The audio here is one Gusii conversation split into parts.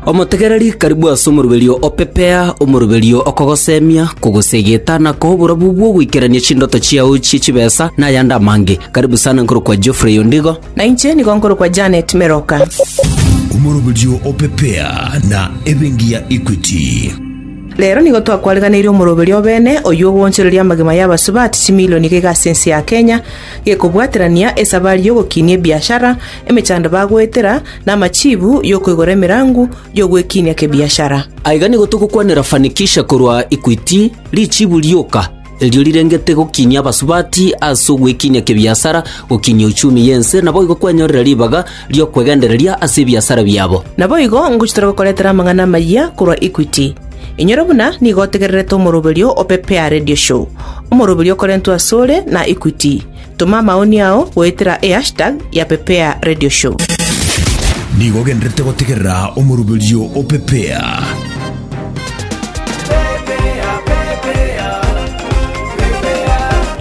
Omotegereri karibu ase omoroberio o pepea omoroberio okogosemia, kogosegeta na koa oborabu bw'ogoikerania chindoto chiao chie chibesa na ayande amange. Karibu sana nkorokwa Geoffrey Ondigo. Na inche nigo nkorokwa Janet Meroka. Omoroberio o pepea na ebenki ya Equity. Rero nigo twakwareganeire omoroberio obene oyio ogoonchoreria amagima y'abasubati chimilioni iga iga ase ense ya Kenya, gekobwaterania esabari y'ogokinia ebiashara, emechando bagoetera, na amachiibu y'okoigora emerangu y'ogwekinia kebiashara. Aiga nigo togokwanera fanikisha korwa Equity, richiibu rioka erio rirengete gokinia abasubati ase ogwekinia kebiasara, gokinia uchumi y'ense, naboigo kwenyorera ribaga ri'okwegendereria ase ebiasara biabo. Naboigo ngochia tore gokoretera amang'ana amayia korwa Equity. Inyore buna nigo otegererete omoroberio o Pepe ya Radio Show, omoroberio okorentwe asore na Equity. Toma amaoni ao goetera eHashtag ya Pepea Radio Show. Nigo ogendererete gotegerera omoroberio o Pepea.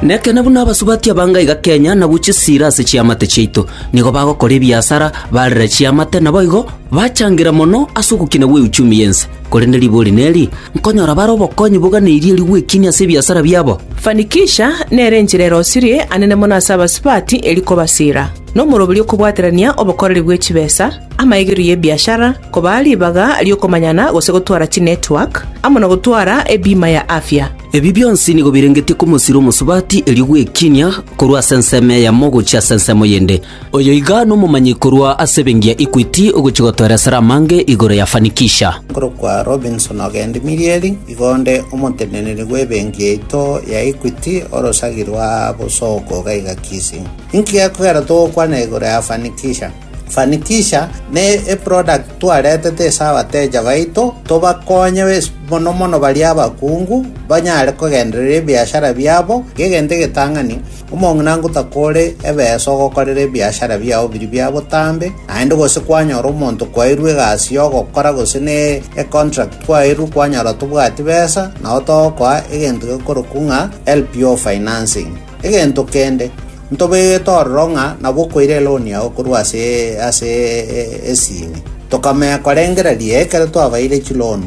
Nekene buna abasubati abanga iga Kenya na guchia esira ase chiamate chiaito. Nigo bagokora ebiasara, barera chiamate na boigo bachangira mono ase ogokina gwe euchumi yense. Korende riboori neri, nkonyora bare obokonyi boganeirie rigwekinia ase ebiasara biabo. Fanikisha nere enchera erosirie ane na mono ase abasubati eri kobasira, na omoroberio kobwaterania obokoreri bwe chibesa, amaegerio y'ebiashara, kobaa ribaga ri'okomanyana gose gotwara chinetwork, amo na gotwara ebima ya afya. Ebi bionsi nigo birengetie komosira omosubati erio gwekinia korwa ase ensemo eyemo gochia ase ensemo yende. Oyo iga nomomanyi korwa ase ebengiya Equity ogochia gotoera esara amange igoro ya Fanikisha. Nkorokwa Robinson Ogendi Mirieri, igo onde omoteneneri bw'ebenki yaito ya Equity orosagi rwa Bosoko iga iga Kisii. Inki gekogera togokwana igoro ya Fanikisha? Fanikisha ne eproduct twaretete ase abateja baito tobakonye mono mono baria abakungu banyare kogendereria ebiashara biabo, egento egetang'ani Omong'ina ngotakore ebeesa ogokorera ebiashara biao biria bia botambe, naende gose kwanyora omonto kwairwe egasi y'ogokora gose ne econtract kwairwe kwanyora tobwati besa, nao togokoa egento gekorokwa ng'a LPO financing. Egento kende, ntobegete ororo ng'a nabo okoira eloan yao korwa ase ase esini. Tokamenya korengera riaye ekero twabaeire chiloan.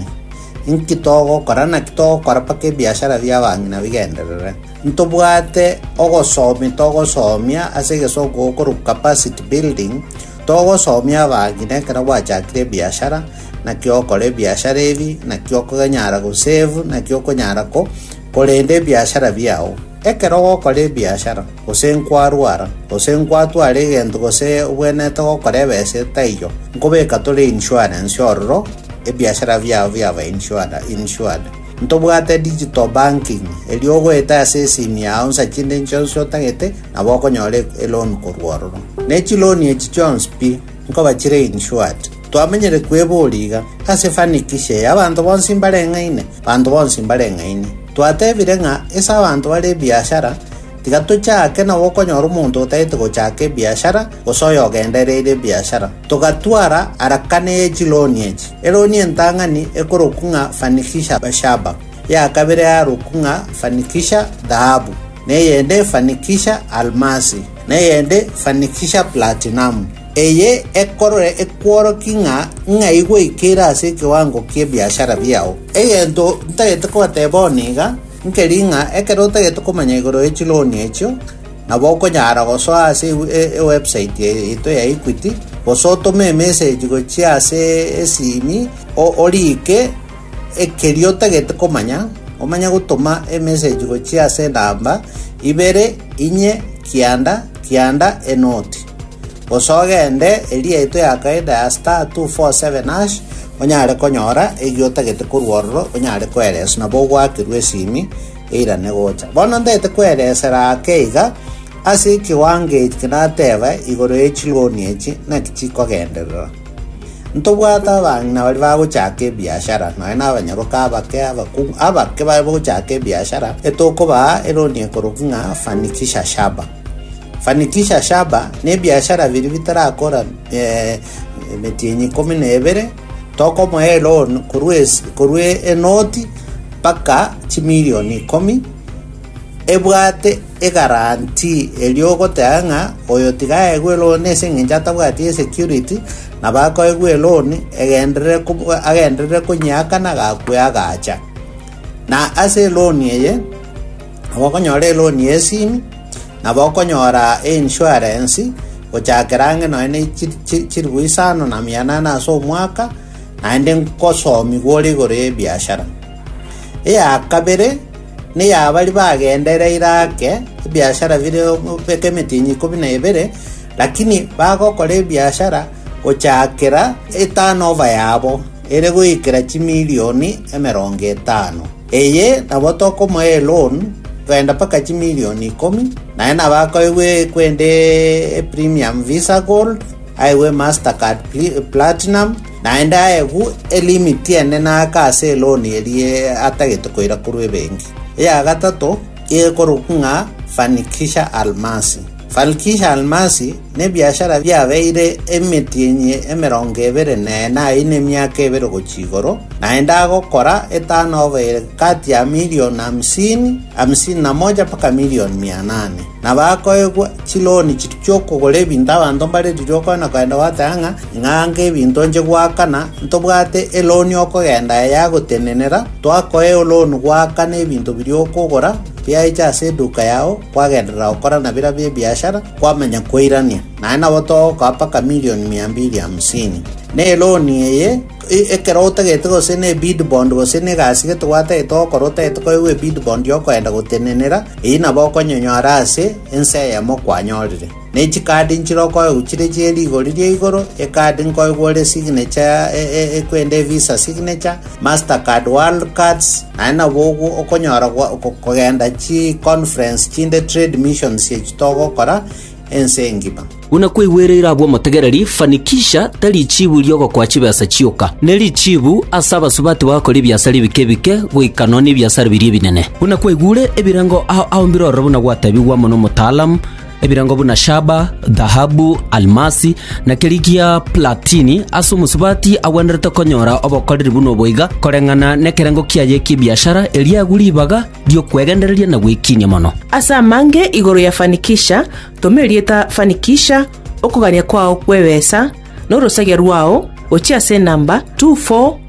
Inki togokora? Naki togokora mpaka ebiashara bi'abang'ina bigenderere? Ntobwate ogosomi togosomia ase egesongo gokorwa capacity building, togosomia abang'ina ekero gwachakire ebiashara, naki ogokora ebiashara ebi, naki okonyara gosave, naki okonyara ko korenda ebiashara biao. Ekero ogokora ebiashara, gose nkwarwara, gose nkwatwara egento gose obwenerete gokora ebese taiyo, nkobeka tore insurance ororo ebiashara biao biaba insure insured. Ntobwate digital banking, erio ogoeta ase esimu yao nsa chinde inche onsi otagete, nabo okonyora eloan korwa ororo. Ne chiloan echi chionsi pi, nkoba chire insured. Twamenyire kwebori iga, ase fanikisha eye abanto bonsi mbareng'aine, banto bonsi mbareng'aini. Twatebire ng'a ase abanto bare ebiashara, Tiga tochake na gokonyora omonto otagete gochaka ebiashara, gose oyogendereire ebiashara. Togatwara arakana ye chiloni echi. Eloni entang'ani ekorokwa ng'a fanikisha shaba, ya kabere yarokwa ng'a fanikisha dhahabu, na eyende fanikisha almasi, na eyende fanikisha platinamu. Eye ekorore ekworokie ng'a ng'ai gweikeire ase ekewango ki'ebiashara biao. Egento ntagete kobateba one iga, Nkeri ng'a ekero otagete komanya igoro ye chiloan echio, nabo okonyara gosoa ase ewebsite yaito ya Equity, gose otome emesegi gochia ase esimi oriike ekeria otagete komanya, omanye gotoma emesegi gochia ase enamba, ibere, inye, kianda, kianda, enoti. Gose ogende eria yaito ya kaida ya *247# onyare konyora erio otagete korwa ororo onyare koereswa nabo ogoakirwe esimi eirane gocha. Bono ntagete koeresera ake iga ase ekiwango eki nateba igoro ye chiloni echi naki chikogenderera. Ntobwate abang'ina baria bagochaka ebiashara nonya na abanyaroka abake abakungu abake bagochaka ebiashara etokobaa eloni ekoroki ng'a fanikisha shaba. Fanikisha shaba nebiashara biria bitarakora emetienyi ikomi na ebere, tokomoa eloan korwa enoti mpaka chimilion ikomi, ebwate egaranti eria ogoteba ng'a oyo tiga aegwe eloan ase eng'encho atabwati esecurity nabo akoegwa eloan agenderere konyeakana agakwe agacha. Na ase eloan eye. Nabokonyora eloni y'esimi, na bokonyora einsuarensi, gochakera ang'e nonya ne chi- chi- chilifu isano na mia enane ase omwaka, naende nkosomigwa ore igoro y'ebiashara. Eya kabere neya baria bagendereire ake, ebiashara bire beka emetienyi ikomi na ebere, lakini bagokora ebiashara gochakera eturn over yabo ere goikera chimilioni emerongo etano. Eye nabo tokomoa eloan kogenda mpaka chimilion ikomi, naye nabo akoegwa ekwende eprimium visa gold, aegwe eMastercard platinum, naende aegwu elimit ende naake ase eloan eria atagete koira korwa ebenki. Eya gatato ekorokwa ng'a Fanikisha Almasi. Balkisha Almasi nebiashara biabeire emetienyi emerongo ebere nene ayio nemiaka ebere gochia igoro, naende agokora eturnover kati ya million hamsini, hamsini na moja mpaka million mia nane. Na bakoegwa chiloan chiokogora ebinto abanto mbare riria okoenda koenda goteba ng'a ing'ange ebinto nche goakana ntobwate eloan okogenda yagotenenera, twakoe eloan goakana ebinto biria okogora, Biaiche ase eduka yao kwagenderera gokora na birabio ebiashara, kwamanya koirania, naye nabo togokoa mpaka milioni mia mbili hamsini. Na eloni eye, e- ekero otagete gose ne bid bond gose ne egasi gete gwatagete gokora otagete koegwa ebid bond y'okoenda gotenenera, eyio nabo okonyonyora ase ense eyemo kwanyorire. Ne chikaadi nchirokoegwa chiria chie rigori ria igoro, ekaadi nkoegwa ore signecha ya ekwende visa signature, master card world cards, naye nabo ogwo okonyora kogenda chi conference chinde trade missions echi togokora ense engima. Buna kwaigwereire abwo omotegereri, fanikisha tari chiibu ri'ogokoa chibesa chioka, ne richiibu ase abasubati bagakora ebiasara ebike ebike, goika nonya nebiasara biria ebinene. Buna kwaigure ebirengo ao ao mbirorere buna gwateebigwa amo nomotaalamu, ebirango buna shaba, dhahabu, almasi, na keria gia platini, ase omosubati agwenerete konyora obokoreri buna oboiga, koreng'ana nekerengo kiaye ki'ebiashara, erio agwe ribaga ri'okwegendereria na gwekiinia mono. Ase amange igoro ya Fanikisha, toma erieta Fanikisha, okogania kwao kw'ebesa, na orosagia rwao, gochia ase enamba 24.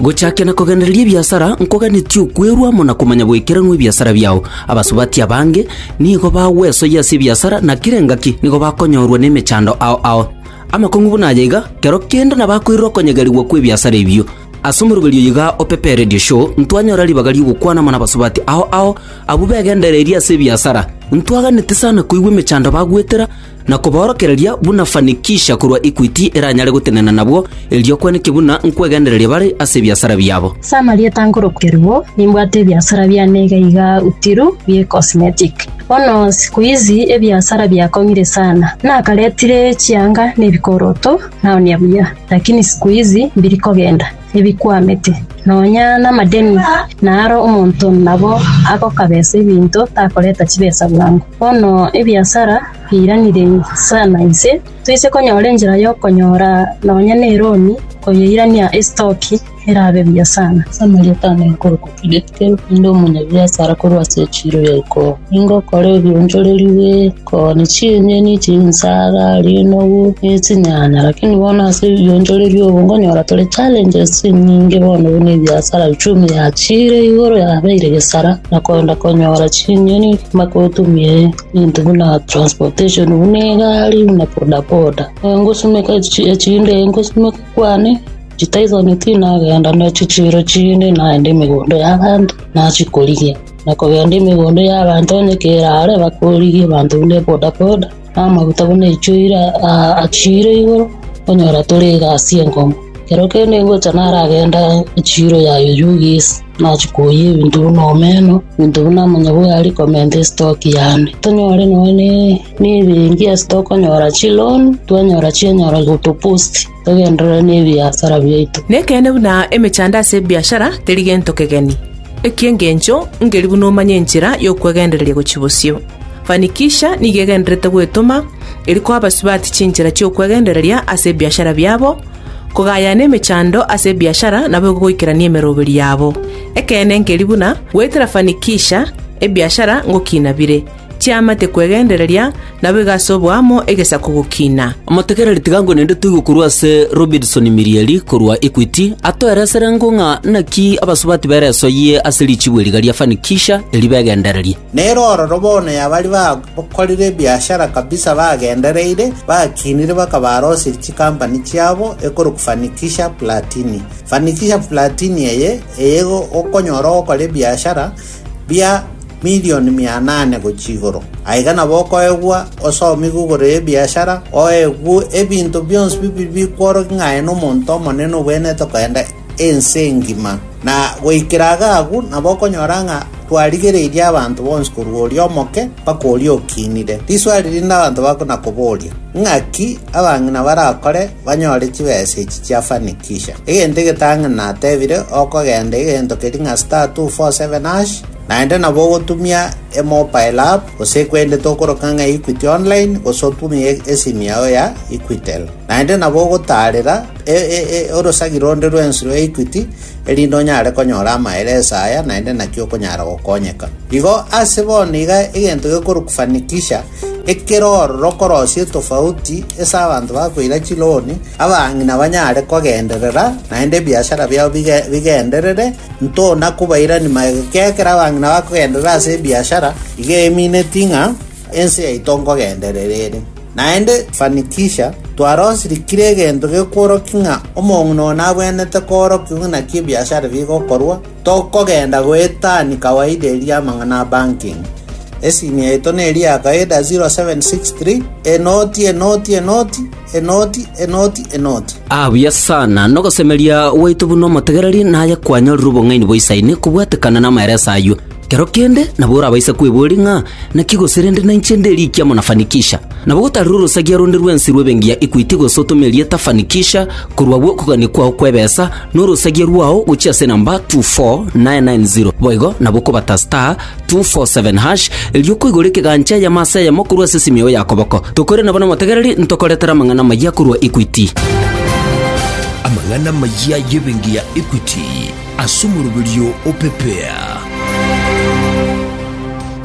Gochakia na kogendereria ebiasara nkoganetie okwerwa amo na komanya goikeranwa ebiasara biao. Abasubati abange nigo bagwesoyia ase ebiasara na kera engaki nigo bakonyorwa nemechando ao ao. Amakong'u buna aya iga, kero kende nabakoirera okonyegerigwa kw'ebiasara ebio. Ase omoroberio oyo iga o Pepe Radio Show ntwanyora ribaga ri'ogokwana amo nabasubati ao ao abwo begendereiri ase ebiasara. Ntwaganete sana koigwa emechando bagwetera, na kobaorokereria buna fanikisha korwa equity eranyare gotenena nabwo, erio kwaneke buna nkwegendereria bare ase ebiasara biabo. Ase amarieta nkorokerigwa, nimbwate ebiasara biane iga iga Uthiru bie Cosmetic. Bono siku izi ebiasara biakong'ire sana. Nakaretire chianga na ebikoroto naonia buya, lakini siku izi mbiri kogenda ebikwamete. Nonya namadeni naro omonto nabo agokabesa ebinto takoreta chibesa bwango. Bono ebiasara biairanire sana inse, toise konyora enchera y'okonyora nonya neroni koyeirania esitoki erabe buya sana. Samaria tana ekorokwa Filikite, inde omonyabiasara korwa ase echiro ya iko. Nigo okore ebionchoreru bie iko, ne chinyeni, chinsaga, rinogu, ne chinyanya. Lakini bono ase ebionchoreru obo nkonyora tore challenges chinyinge bono buna ebiasara, uchumi yachiire igoro yabeire gesara. Nakoenda konyora chinyoni ngima kotumia ebinto buna transportation buna egari buna bodaboda Eh, ngosumeka echi- echinde ngosumeka kwane chitaisoni tinagenda ne chichiro chinde naende emegondo y'abanto nachikorigia nakogenda emegondo y'abanto onye kerare bakorigia abanto buna bodaboda Amaguta buna echuire aa achiire igoro, onyora tore egasi enkomo. Kero kende ingocha naragenda echiiro ya oyugi ase nachi koyia ebinto buna omeno, ebinto buna amanyabwari komenta estock yane. Tonyore nonya ne ne ebenki ase tokonyora chiloan, twanyora chianyara gotopost. Togenderere nebiasara biaito. Nekeene buna emechando ase ebiashara teri gento kegeni, eki'engencho ngeri buna omanye enchera y'okwegendereria gochia bosio. Fanikisha nigo egendererete gwetoma eri koa abasubati chinchera chi'okwegendereria ase ebiashara biabo, kogayana emechando ase ebiashara nabo egogoikerania emeroberi yabo. Ekeene ngeri buna goetera Fanikisha ebiashara ngokina bire. Chiamate kwegendereria, nabo igasobwa amo egesaku gokina. Motegereri tiga ngo nende toigwe korwa ase Robinson Mirieri korwa Equity, atoeresere ngo ng'a naki abasubati beresoyie ase richibu eri riga ria Fanikisha eri begendererie. Nere ororo bono y'abari bakorire ebiashara kabisa bagendereire, bakinire bakaba arosirie chikampani chiabo ekorokwa Fanikisha Platini. Fanikisha Platini eye, eye gokonyora ogokora ebiashara, bia milioni mia nane gochia igoro. Aiga nabo okoegwa osomi gw'igoro y'ebiashara, oegwe ebinto bionsi bibiri bikworokia ng'a aye nomonto omonene obwenerete kogenda ense engima. Na goikera iga agwo nabo okonyora ng'a twarigereirie abanto bonsi korwa oria omoke mpaka oria okinire. Riswali rinde abanto bakona koboria, Ng'aki abang'ina barakore banyore chibesa echi chia Fanikisha. Egento egetang'ani natebire, Okogenda egento keria ng'a star two four seven hash, naende nabo ogotumia emobile app, gose kwende tokoroka ng'a Equity Online, gose otumie esimu yao ya Equitel. Naende nabo ogotaarera e- e- e- orosagi ronde rwensi rwa Equity, erinde onyare konyora amaereso aya, naende naki okonyara gokonyeka. Igo ase bono iga egento gekorokwa Fanikisha, Ekero orokorosia etofauti ase abanto bakoira chiloni, abang'ina banyare kogenderera, naende ebiashara biabo bigenderere, ntona kobairani magega. Ekiagera ekero abang'ina bakogenderera ase ebiashara, igo emineti ng'a ense yaito nkogenderera ere. Naende Fanikisha, twarosirikire egento gekworokia ng'a omong'ina oyo nabwenerete koorokigwa naki ebiashara bigokorwa, Tokogenda goetania kawaida eria y'amang'ana a banking. Esimu yaito neri ya kawaida 0763 enoti enoti enoti enoti enoti enoti. Ah buya sana, nogosemeria gwaito buna omotegereri naye kwanyorire obong'aini bwa Isaini kobwatekana namaereso ayio. Kero kende nabo orabaise kwebuoria ng'a naki gose rende nainche nderikia muna Fanikisha. Nabo gotarire orosagia ronde rwensi rw'ebengiya Equity gose otome erieta Fanikisha korwa bw'okogania kwao kw'ebesa, Norosagia rwao gochia ase enamba 24990 boigo nabo okobata star 247 hash erio okoigora ekegancha eyemo ase eyemo korwa ase esimi yao ya koboko. Tokore nabo namotegereri ntokoretere amang'ana amayia korwa Equity. Amang'ana amayia y'ebenki ya Equity ase omoroberio o Pepea.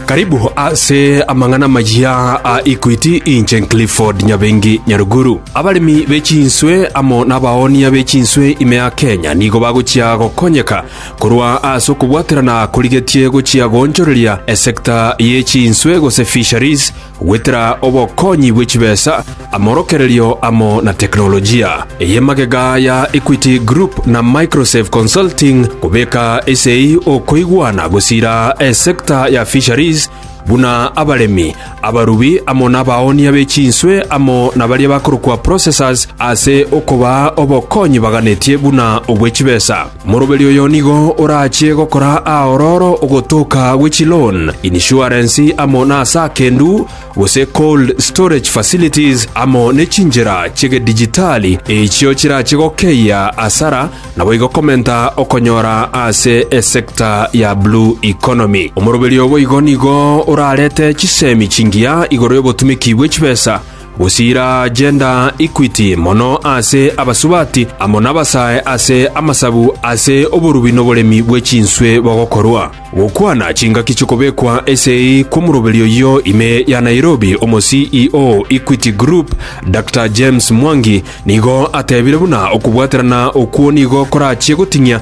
Karibu ase amang'ana amayia a Equity inche Clifford Nyabengi Nyaruguru. Abaremi be chinswe amo nabaoonia be chinswe ime ya Kenya nigo bagochia gokonyeka korwa ase okobwaterana korigetie gochia goonchoreria esector ye chinswe gose fisheries Gwetera obokonyi bwe chibesa, amorokererio amo na teknolojia, eye magega ya Equity Group na Microsafe Consulting kobeka ase okoigwana gosiira esector ya fisheries buna abaremi, abarubi amo nabaoonia be chinswe amo na baria bakorokwa processors ase okobaa obokonyi baganetie buna obwe chibesa. Moroberi oyo nigo orache gokora aororo ogotoka gwe chi loan, insurance amo na ase akendu, gose cold storage facilities amo ne chinchera chi'egedijitali echio chirache gokeyia asara naboigo komenta okonyora ase esector ya blue economy. Omoroberi oboigo nigo orarete chisemi chingiya igoro y'obotumiki bwe chibesa, Gosiira gender equity mono ase abasubati amo nabasae ase amasabu ase oborubi noboremi bwe chinswe bogokorwa. Gokwana chingaki chikobekwa esegi kw'omoroberi oyio ime ya Nairobi omo CEO Equity Group Doctor James Mwangi nigo atebire buna okobwaterana okwo nigo korachie goting'ia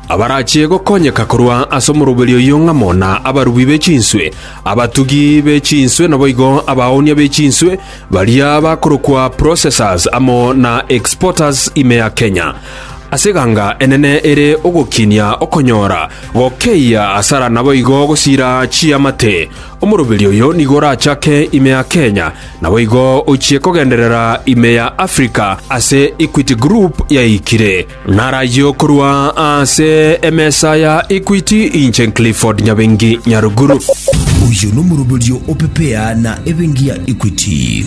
Abarachie gokonyeka korwa ase omoroberi oyio ng'a mona abarubi be chinswe, abatugi be chinswe naboigo abaoonia be chinswe, baria bakorokwa processors amo na exporters ime ya Kenya. Ase eganga enene ere ogokinia okonyora, gokeyia asara naboigo gosira chiamate, omoroberi oyio nigo orachake ime ya Kenya naboigo ochie kogenderera ime ya Africa ase Equity Group yaikire. Narayie okorwa ase emesa ya Equity, inche Clifford Nyabengi Nyaruguru. Oyo nomoroberio o Pepea na ebengi ya Equity.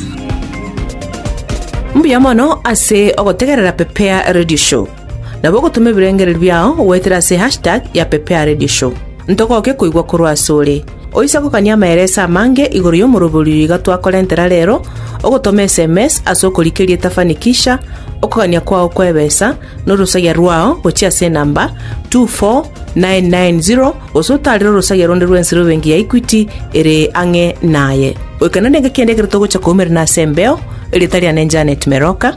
Mbuya mono ase ogotegerera Pepea Radio Show. Nabo ogotoma ebirengererio biao goetera ase hashtag ya Pepea Radio Show. Ntogoke koigwa korwa asore. Oise gokania amaereso amange igoro y'omoroberio oyo iga twakorentera reero, ogotoma eSMS ase okorikeria etafani kisha okogania kwao kw'ebesa na orosagia rwao gochia ase enamba 24990 gose otaarere orosagia ronde rw'ensero ebenki ya Equity ere ang'e naye. Goika nere ngakende ekero togocha koumerana ase embeo, erieta riane Janet Meroka.